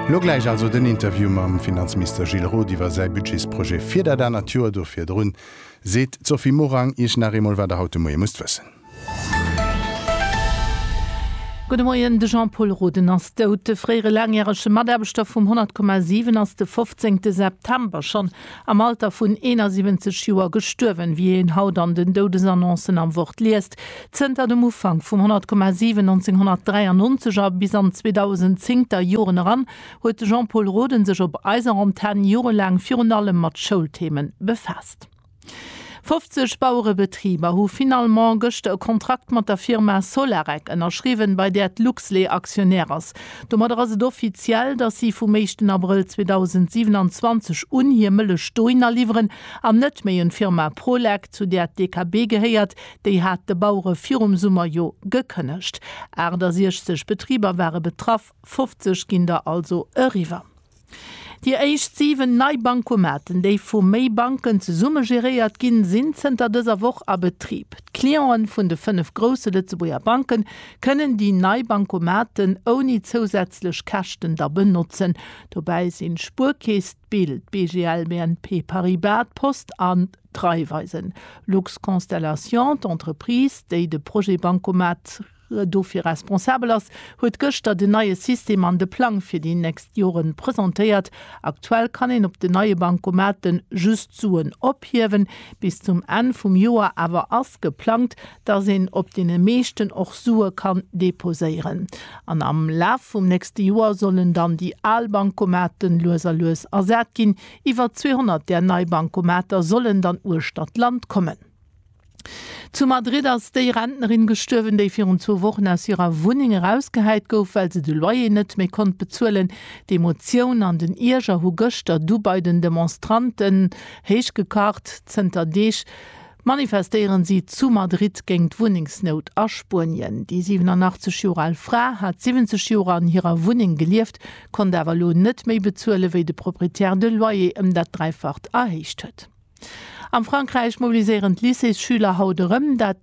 Lo gläich also den Interview mam Finanzmister Gilles Roth iwwer säi Budgetsprojet fir dat anert Joer. Do virdrun seet d'Sophie Morang Iech nach eemol, wat Der haut de Moie musst wëssen. Gudde Moien. De Jean-Pol Roden ass dout. De fréiere laangjärege Mataarbechter vum 100,7 ass de 15 September schonn am Alter vun 71 Joer gestuerwen, wéi een haut an den Doudesannoncen am Wort liest. Zënter dem Ufank vum 100,7 1993 a bis an 2010 der Joren eran huet de Jean-Pol Roden sech op eiser Antenn jorelaang virun allem mat Schoulthemen befaasst. 50 Bauerebetriber hu finalement gëschter e Kontrakt mat der Firma Solarec ënnerschriwwen, bei där d'Luxlait Aktionär ass. Domadder ass et offiziell, dass si vum éischten Abrëll 2027 un hir Mëllech dohin aliwweren an net méi un d'Firma Prolec, zu där d'DKB gehéiert. Déi hat de Bauere virum Summer jo gekënnegt. 68 Betriber ware betraff, 50 ginn der also eriwwer. Déi éischt 7 nei Bancomaten, déi vu méi Banken zesumme geréiert ginn, sinn zënter dëser Woch a Betrib. D'Cliente vun de 5 grousse Lëtzebuerger Banken kënnen déi nei Bancomaten ouni zousätzlech Käschten da benotzen. Dobäi sinn d'Spuerkeess, d'BIL, d'BGL, BNP Paribas, d'Post an d'Raiffeisen. Lux Constellation, d'Entreprise, déi de Projet Bancomat dofir responsabel ass, huet gëschter den neie System an de Plang fir déi nächst Jore presentéiert. Aktuell kann een op den neie Bankomate just Suen ophiewen. Bis zum Enn vum Joer awer ass geplangt, dass een op deene meeschten och Sue kann deposéieren. An am Laf vum nächste Joer sollen dann déi al Bankomate lues a lues ersat ginn. Iwwer 200 där nei Bankomater sollen dann uechter d'Land kommen. Zu Madrid ass déi Rentnerin gestuerwen, déi virun zwou Wochen aus hirer Wunneng erausgehäit gouf, well se de Loyer net méi konnt bezuelen. D'Emotioun an den Ierger hu gëschter du bei den Demonstranten héich gekacht. Zënter Deeg manifestéieren si zu Madrid géint d'Wunnengsnout a Spuenien. Déi 87 Joer al Fra hat 70 Joer an hirer Wunneng gelieft, konnt awer elo net méi bezuelen, wéi de Proprietär de Loyer ëm dat Dräifacht erhéicht huet. Am Frankräich mobiliséieren d'Lycéesschüler haut erëm. Dat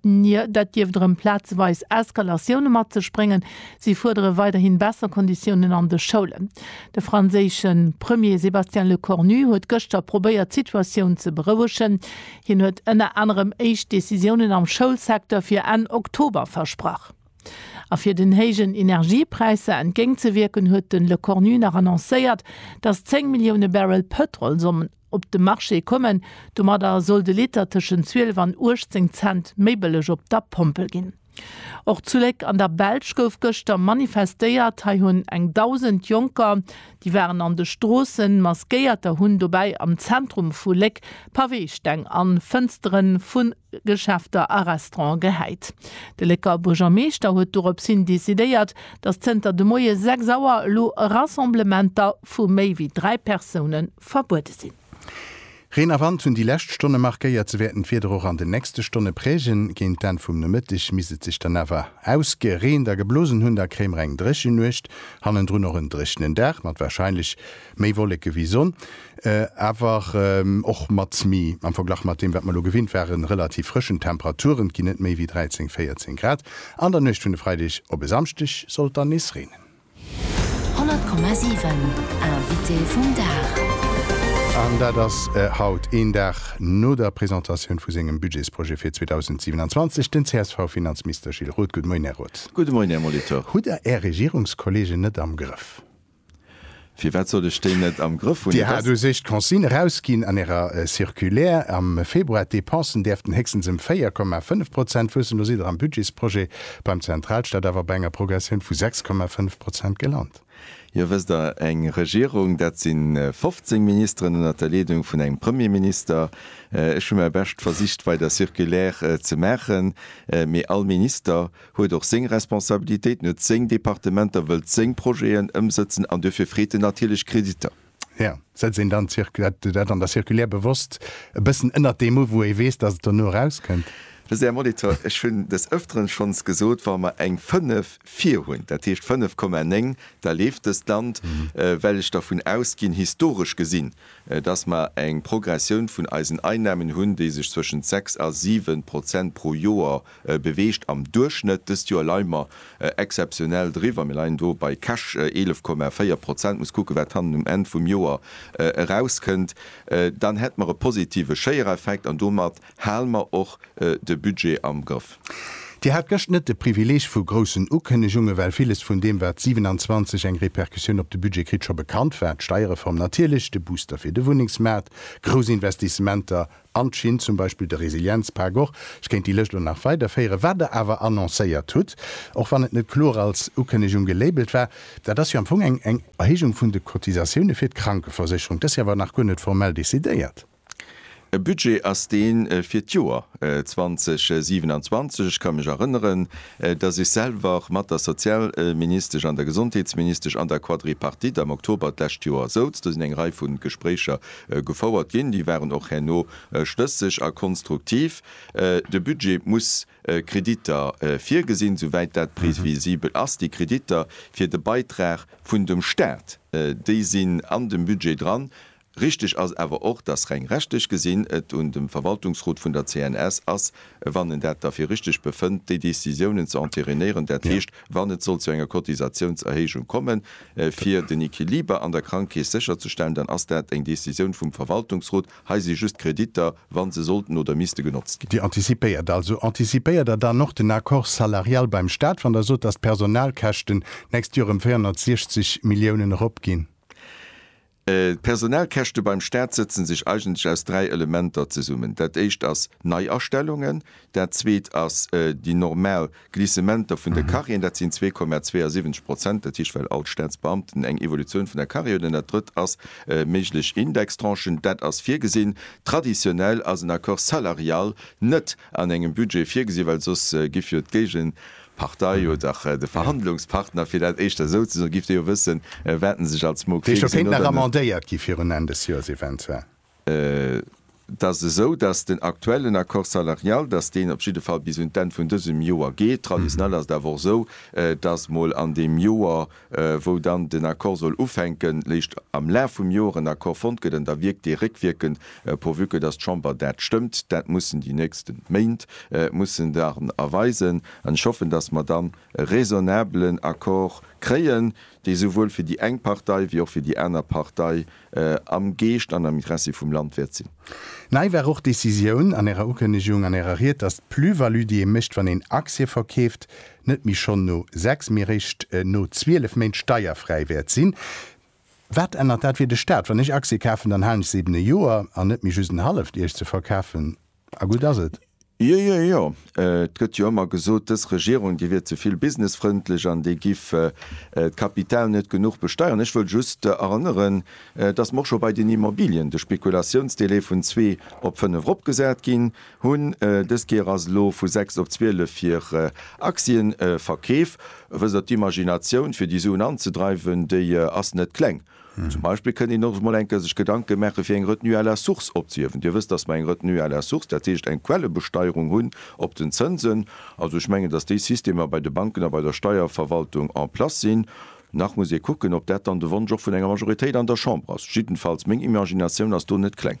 dierft erëm plazeweis Eskalatioune mat sech bréngen. Si fuerdere weiderhi besser Konditiounen an de Schoulen. De franséische Premier Sébastien Lecornu huet gëschter probéiert d'Situatioun ze berouegen. Hien huet ënner anerem éischt Decisiounen am Schoulsecteur fir Enn Oktober versprach. A fir den héijen Energiepräisser entgéintzewierken, huet de Lecornu nach annoncéiert, datt 10 Millioune Barrel Pëtrol sollen op de Marché kommen. Domadder soll de Liter tëschent 12 an 18 Cent méi bëlleg op der Pompel ginn. Och zu Léck an der Belsch gouf gëschter manifestéiert. Hei hunn eng Dausend Jonker, déi waren an de Stroossen, maskéiert a hunn dobäi am Zentrum vu Léck Paweesteng a Fënstere vu Geschäfter a Restaurante gehäit. De Lécker Buergermeeschter huet dorops hin decidéiert, datt zënter de Moie 6 Auer elo Rassemblementer vu méi wéi dräi Persoune verbuede sinn. Reen a Wand hunn déi lescht Stonne markéiert. Se wäerten d'Wieder och an den nächste Stonne prägen. Géint d'Enn vum Nomëtteg misst et sech dann awer ausgereent a geblosen hunn. Da kréie mer eng dréchen Nuecht, hannendrun och en dréchenen Dag mat warscheinlech méi Wolleke wéi Sonn, awer och mat méi, am Verglach mat deem wat mer elo gewinnt waren, relativ frëschen Temperaturen. Et ginn net méi wéi 13, 14 Grad. An der Nuecht vun e Freideg op e Samschdeg soll et dann nees reenen. 100,7 Invité vum Dag. An dat ass haut, een Dag no der Presentatioun vu sengem Budgetsprojet fir 2027, den CSV-Finanzmister Gilles Roth. Gudde Moien, Här Roth. Gudde Moien, Här Molitor. Hutt Der Är Regierungskollegen net am Grëff? Firwat sollt ech déi net am Grëff hunn? Dir hat u sech d'Consigne erausginn an Ärer Circulaire am Februar, d'Depensen däerften héchstens ëm 4,5 Prozent wuessen. Elo sidd Der am Budgetsprojet Beim Zentralstaat awer bei enger Progressioun vu 6,5 Prozent gelant. Jo, wësst Der, eng Regierung, dat si 15 Ministeren ënnert der Leedung vun engem Premierminister. Ech hu mäi Bescht versicht bei der Circulaire ze maachen, mee all Minister huet och seng Responsabilitéiten, huet seng Departementer, wëllt seng Projeten ëmsëtzen an duerfir freet en natierlech Kreditter. Ja, setzt een dann dat an der Circulaire bewosst e bëssen ënnert dee Muff, wou ee weess, datt et dono erauskënnt? Mä Här Molitor, ech hunn des Ëfteren schonns gesot, wa mer eng 5 vir hunn, dat heescht 5,9, da leeft dëst Land, well ech dervun ausginn, historesch gesinn, datt mer eng Progressioun vun eisen Einnahmen hunn, déi sech zwëschent 6 a 7 Prozent pro Joer beweegt am Duerchschnëtt. Dëst Joer leie mer exzeptionell driwwer, mir leien do bei cash 11,4 Prozent, muss kucke wat hannen um Enn vum Joer erauskënnt, dann hätt mer e positive Schéiereffekt an domat hale mer och de Budget am Grëff. Dir hat gëscht net de Privileeg vu groussen Ukënnegunge well villes vun deem wat 27 eng Repercussioun op de Budget kritt, scho bekannt war, d'Steierreform natierlech, de Booster fir de Wunnengsmaart, grouss Investissementer, an d'Schinn, zum Beispill de Resilienzpak och, ech kéint déi Lëscht elo nach weiderféieren, wat Der awer annoncéiert hutt, och wann et net kloer als Ukënnegung gelabelt war, dat ass jo am Fong eng Erhéijung vun de Cotisatioune fir d'Krankeversécherung. Dat ass jo awer nach guer net formell decidéiert. E Budget ass dee fir d'Joer 2027. Ech ka mech erënneren, datt ech selwer mat der Sozialministesch an der Gesondheetsministesch an der Quadripartite am Oktober d'lescht Joer souz. Do sinn eng Rei vu Gespréicher Gefouert ginn. Déi waren och herno schlësseg a konstruktiv. De Budget muss Kreditter virgesinn, souwäit dat previsibel ass. Déi Kreditter fir de Beitrag vun dem Stat, déi sinn an dem Budget dran. Richteg ass awer och, dass reng rechtlech gesinn et un dem Verwaltungsrot vun der CNS ass, wann en dat da fir richteg befënnt, déi Décisiounen ze entérinéieren, dat heescht, wann et sollt zu enger Cotisatiounserhéijung kommen, fir den Equiliber an der Krankkeess sécherzestellen, dann ass dat eng Décisioun vum Verwaltungsrot. Hei si just Kreditter, wa se sollten oder misste genotzt ginn. Dir antizipéiert also. Antizipéiert Der dann och den Accord salarial beim Stat, wann Der sot, dass d'Personalkäschten d'nächst Joer ëm 460 Milliounen eropginn? D'Personalkäschte beim Staat sëtzen sech eigentlech aus dräi Elementer zesummen. Dat éischt ass Neiastellungen, dat zweet ass déi normal Glissementer vun de Carrièren, dat sinn 2,72 Prozent, dat heescht well all d'Staatsbeamten eng Evolutioun vun der Carrière hunn, an dat drëtt ass méiglech Indextranchen. Dat ass virgesinn. Traditionell ass en Accord salarial net an engem Budget virgesinn, well soss giff jo d'Géigen. Partei oder de Verhandlungspartner, fir dat éischter esou ze soen, giff Dir jo wëssen, wat en sech als Mo kritt. Déi Scho kéint nach amendéiert gi virun Enn des Joers eventuell. Et ass esou, datt den aktuellen Accord salarial, datt deen op jidde Fall bis un d'Enn vun dësem Joer geet. Traditionell ass et awer och esou, datt mol an deem Joer wou dann den Accord soll ufänken, léischt am Laf vum Joer en Accord fonnt gëtt, an da wierkt dee réckwierkend, pourvu que dass d'Chamber dat stëmmt. Dat mussen déi nächste Méint mussen dann erweisen, an ech hoffen, dass mer dann e raisonnabelen Accord kréien, dee souwuel fir déi eng Partei wéi och fir déi aner Partei Am Geescht an am Interessi vum Land wäert sinn. Nei war och d'Decisioun an Ärer Ukënnegung, an Ärer Ried, dass d'Plus-value, déi ee mécht, wann een Aktie verkeeft, net méi schonn no sechs, mee eréischt no zwielef Méint steierfräi wäert sinn. Wat ännert dat fir de Staat? Wann ech Aktie kafen, dann halen ech se eben e Joer an net méi just en halleft Iech ze verkafen. A gutt ass et. Jo, jo, jo. Et gëtt jo ëmmer gesot, dës Regierung, déi wier ze vill businessfrëndlech an déi giff d'Kapital net genuch besteieren. Ech wëll just erënneren, dass mer och scho bei den Immobilien de Spekulatiounsdelai vun zwee op fënnef eropgesat ginn hunn. Dës Kéier ass elo vu sechs op zwielef fir Aktienverkeef. Wësst Der, d'Imaginatioun, fir déi Suen anzedreiwen, déi ass net kleng. Zum Beispill kënnt een och emol eng Kéier sech Gedanke maache fir eng Retenue à la source opzehiewen. Dir wësst, datt mer eng Retenue à la source, dat heescht eng Quellebesteierung hunn op den Zënsen. Also ech mengen, datt déi Systemer bei de Banken a bei der Steierverwaltung en place sinn. Nach muss ee kucken, ob dat dann de Wonsch och vun enger Majoritéit an der Chamber ass. Jiddenfalls, meng Imaginatioun ass do net kleng.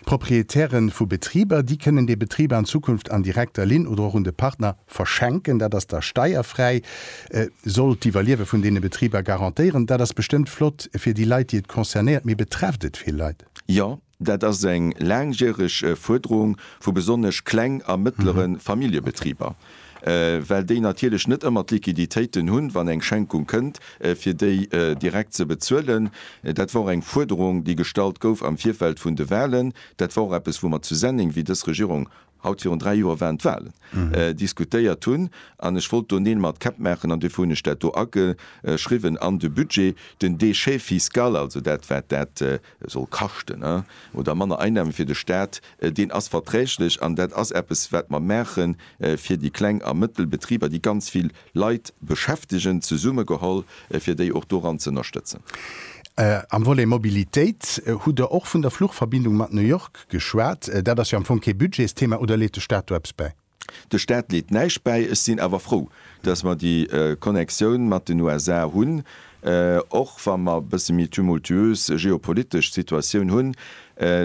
D'Proprietäre vu Betriber, déi kënnen de Betrib an Zukunft an direkter Linn oder och un de Partner, Verschenken, dat ass da steierfräi, soll d'Iwwerliewe vun deene Betriber garantéieren. Dat ass bestëmmt flott fir déi Leit, déi et concernéiert. Mee betrefft et vill Leit? Jo, dat ass eng laangjäreg Fuerderung vu besonnesch kleng a mëttlere Familljebetriber, well déi natierlech net ëmmer d'Liquiditéiten hunn, wann eng Schenkung kënnt, fir déi direkt ze bezuelen. Dat war och eng Fuerderung, déi gestallt gouf am Virfeld vun de Wahlen. Dat war och eppes, wou mer zu Senneng, wéi dës Regierung haut virun dräi Joer waren d'Wahlen, diskutéiert hunn, an ech wollt do Neel mat Käpp maachen, an duerfir hunn ech dat do ageschriwwen an de Budget, den Déchet fiscal, also dat, wat dat soll kaschten, oder manner Einnahme fir de Stat, deen ass verträglech, an dat ass eppes, wat mer maachen fir déi kleng a mëttel Betriber, déi ganz vill Leit beschäftegen, zesummegeholl, fir déi och doran ze ënnerstëtzen. Am Volet Mobilitéit hutt Der och vun der Fluchverbindung mat New York geschwat. Dat ass jo am Fong kee Budgetsthema. Oder leet de Staat do eppes bäi? De Staat leet näischt bäi. Ech sinn awer frou, dass mer déi Connexioun mat den USA hunn. Och wa mer e bësse méi tumultuös geopolitesch Situatioun hunn,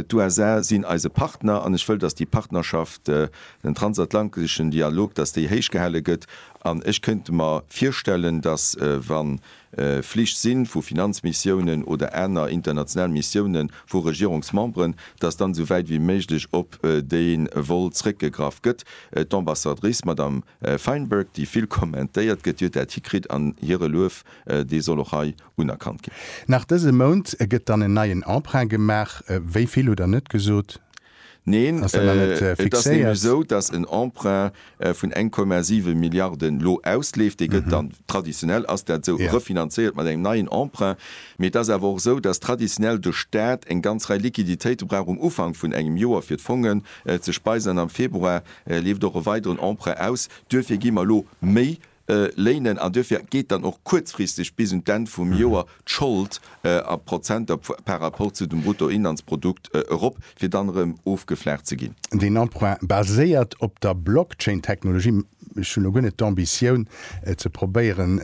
d'USA sinn eise Partner an ech wëll, dass déi Partnerschaft, den transatlanteschen Dialog, dass déi héichgehale gëtt. An ech kënnt mer virstellen, dass wa Flich sinn vu Finanzmissiounen oder aner international Missiounen vu Regierungsmemberen, dass dann esou wäit wéi méiglech op dee Vol zrëckgegraff gëtt. D'Ambassadrice, Madame. Feinberg, déi vill kommentéiert gëtt, huet dat hikritt an hire Luef, dee soll och hei unerkannt ginn. Nach dëse Mount gëtt dann en neien Emprunt gemaach. Wéi vill hutt Der net gesot? Neen, et ass nämlech esou, datt en Emprunt vun 1,7 Milliarden elo ausleeft. Dee gëtt dann, traditionell ass dat esou, refinanzéiert mat engem neien Emprunt. Mee et ass awer och esou, datt traditionell de Staat eng ganz Rei Liquiditéite brauch um Ufank vun engem Joer, fir d'Fongen ze speisen an am Februar E leeft och e weideren Emprunt aus. Duerfir gi mer elo méi léinen an duerfir geet dann och kuerzfristeg bis un d'Enn vum Joer d'Schold a Prozenter par rapport zu dem Bruttoinlandsprodukt erop, fir dann erëm ofgeflaacht ze ginn. Deen Emprunt baséiert op der Blockchain-Technologie. Ech hunn elo guer net d'Ambitioun, ze probéieren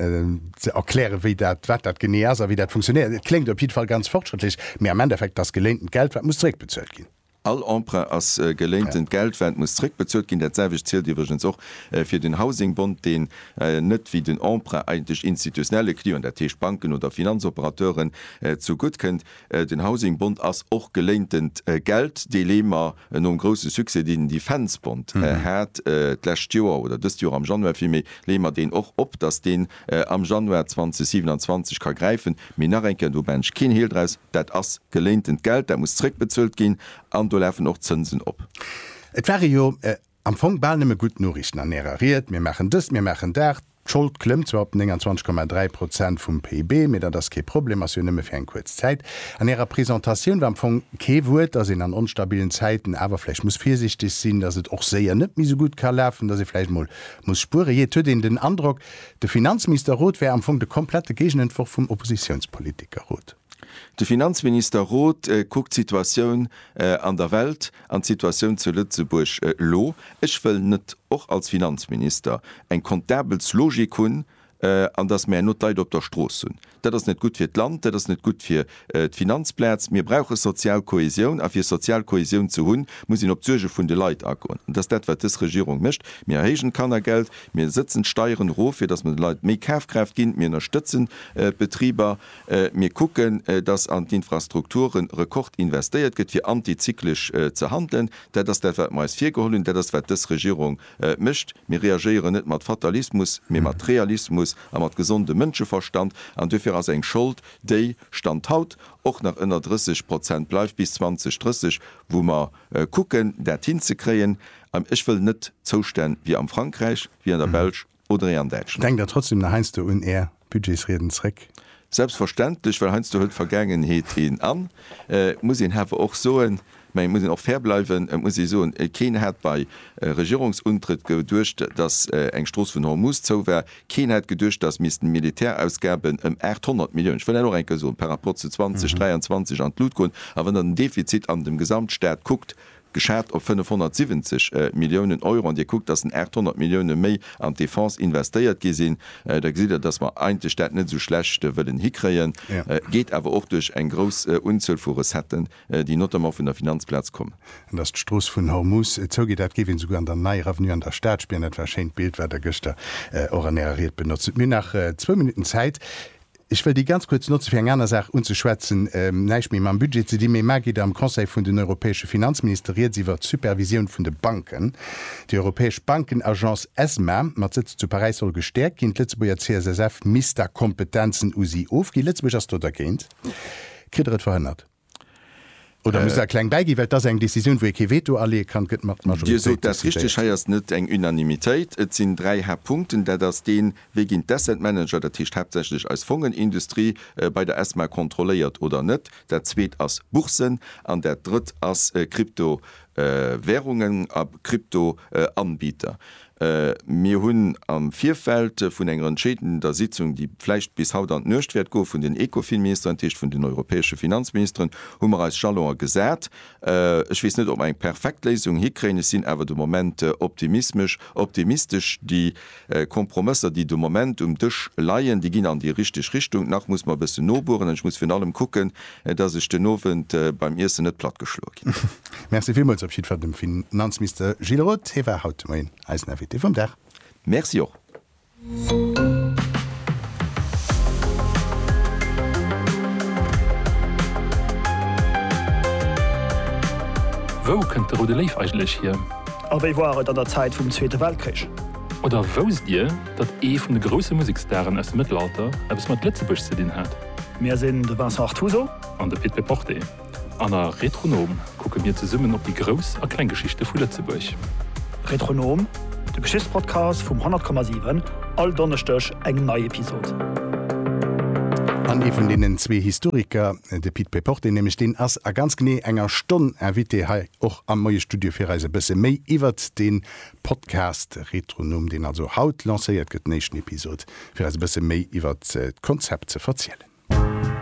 ze erklären, wéi dat, wat dat genee ass a wéi dat funktionéiert. Et kléngt op jiddwer Fall ganz fortschrëttlech, mee am Endeffekt ass geléintent Geld, wat muss zeréckbezuelt ginn. All Emprunt ass geléintent Geld, wat muss zréckbezuelt ginn. Dat selwecht zielt iwwregens och fir den Housing Bond, deen net wéi den Emprunt eigentlech institutionelle Clienten, dat heescht Banken oder Finanzoperateuren, zu gutt kënnt. Den Housing Bond ass och geléintent Geld, dee lee mer nom grousse Succès, deen den Defence Bond hat d'lescht Joer, oder dëst Joer am Januar villméi, leeë mer deen och op, dass deen am Januar 2027 ka gräifen. Mee nach eng Kéier, do maachen ech keen Heel draus. Dat ass geléintent Geld, dat muss zréckbezuelt ginn an do lafen och Zënsen op. Et ware jo am Fong bal nëmme gutt Noriichten an Ärer Ried, mir maachen dëst, mir maachen dat, d'Schold klëmmt zwar op 29,3 Prozent vum PIB, mee dat ass kee Problem, ass jo nëmme fir eng kuerz Zäit. An Ärer Presentatioun war am Fong kee Wuert, dass een an onstabilen Zäiten awer vläicht muss virsiichteg sinn, dass et och séier net méi esou gutt ka lafen, dass ee vläicht emol muss spueren. Jee, et huet een den Androck, de Finanzministerrot wär am Fong de komplette Géigenentworf vum Oppositiounspolitikerrot. De Finanzminister Roth kuckt d'Situatioun an der Welt an d'Situatioun zu Lëtzebuerg elo. Ech wëll net, och als Finanzminister, eng Comptables Logik hunn an datt mir herno d'Leit op der Strooss hunn. Dat ass net gutt fir d'Land, dat ass net gutt fir d'Finanzplaz. Mir brauche sozial Kohäsioun a fir sozial Kohäsioun ze hunn, muss een op d'Suerge vun de Leit agoen. An dat ass dat wat dës Regierung mécht. Mir erhéijen d'Kannergeld, mir setzen d'Steieren erof fir datt mer de Leit méi Kafkraaft ginn, mir ënnerstëtzen d'Betriber. Mir kucken, dass an d'Infrastrukture Rekord investéiert gëtt, fir antizyklesch ze handelen. Dat ass dat, wat mer eis virgeholl hunn. Dat ass, wat dës Regierung mécht. Mir reagéieren net mat Fatalismus, mee mat Realismus a mat gesondem Mënscheverstand. An duerfir ass eng Schold, déi, Stand haut, och nach ënner 30 Prozent bleift bis 2030, wou mer kucken, dat hinzekréien. Ech wëll net Zoustänn wéi am Frankräich, wéi an der Belsch. oder ee an Däitschland? Denkt der trotzdem nach heiansdo un Är Budgetsrieden zréck? Selbstverständlech, well heiansdo hëlt d'Vergaangenheet een an. Et muss een hawer och soen, mä et muss een och fair bleiwen, et muss ee soen, keen hat bei Regierungsuntrëtt geduecht, datt eng Strooss vun Hormus zou war, keen hat geduecht, datt missten Militärausgaben ëm 800 Milliounen, ech wëll dat och eng Kéier soen, par rapport zu 2023 an d'Lut goen. A wann Der den Defizit an dem Gesamtstat kuckt, geschat op 570 Milliounen Euro, an Dir kuckt, dass den 800 Millioune méi an d'Defense investéiert gi sinn, da gesitt Der, dass mer eigentlech dat net esou schlecht wëllen hikréien, geet awer och duerch eng grouss Unzuel vu Recetten, déi notamment vun der Finanzplaz kommen. An dass d'Strooss vun Hormus zougeet, dat géif een esouguer an der Neier Avenue an der Stad spieren. Dat war e schéint Bild, wat Der gëschter och an Ärer Ried benotzt hutt. Mir hunn nach zwou Minutten Zäit. Ech wëll déi ganz kuerz notze fir eng aner Saach unzeschwätzen, näischt méi mam Budget ze dinn, mee mar geet am Conseil vun den europäesche Finanzminister Rieds iwwert d'Supervisioun vun de Banken. Déi europäesch Bankenagence ESMA mat Sëtz zu Paräis soll gestäerkt ginn. D'Lëtzebuerger CSSF misst da Kompetenzen u si ofginn. Lëtzebuerg ass do dergéint, kritt der et verhënnert. Oder muss der kleng bäiginn, well et ass eng Décisioun, wou ee kee Veto aleeë kann, gëtt mat Majoritéit decidéiert. Dir sot dat richteg, hei ass net eng Unanimitéit. Et sinn dräi Haaptpunkten. Dat ass deen, Wéi ginn d'Asset Manager, dat heescht haaptsächlech eis Fongenindustrie, bei der ESMA kontrolléiert oder net? Dat Zweet ass Boursen. An dat Drëtt ass Kryptowärungen a Kryptoanbieter. Mir hunn am Virfeld vun enger entscheedender Sitzung, déi vläicht bis haut an d'Nuecht wäert goen, vun den Ecofin-Ministeren, dat heescht vun den europäesche Finanzministeren, hu mer eis Jalonen gesat. Ech weess net, ob mer eng perfekt Léisung hikréien. Ech sinn awer de Moment optimismesch, optimistesch. Déi Kompromësser, déi de Moment um Dësch leien, déi ginn an déi richteg Richtung. Nach muss mer e bëssen nobueren an ech muss virun allem kucken, dass ech den Owend beim Iessen net platt geschloe ginn. Merci villmools op jiddwer dem Finanzmister Gilles Roth. Hie war haut de Moien eisen Invité vum Dag. Merci och. Wou kënnt de Roude Léiw eigentlech hier? A wéi war et an der Zäit vum Zweete Weltkrich? Oder wousst Dir, datt ee vun de grousse Musekstaren aus dem Mëttelalter eppes mat Lëtzebuerg ze dinn hat? Mir sinn de Vincent Artuso. An de Pit Peporte. An a Retronom kucke mir zesummen op déi grouss a kleng Geschichte vu Lëtzebuerg. Retronom, de Geschichtspodcast vum 100,7, all Donneschdeg eng nei Episod. An ee vun deenen zwee Historiker, de Pit Peporte nämlech, deen ass a ganz genee enger Stonn Invité hei och am Moie-Studio fir eis e bësse méi iwwert dee Podcast Retronumm, deen also haut lancéiert gëtt, den éischten Episod, fir eis e bësse méi iwwert d'Konzept ze verzielen.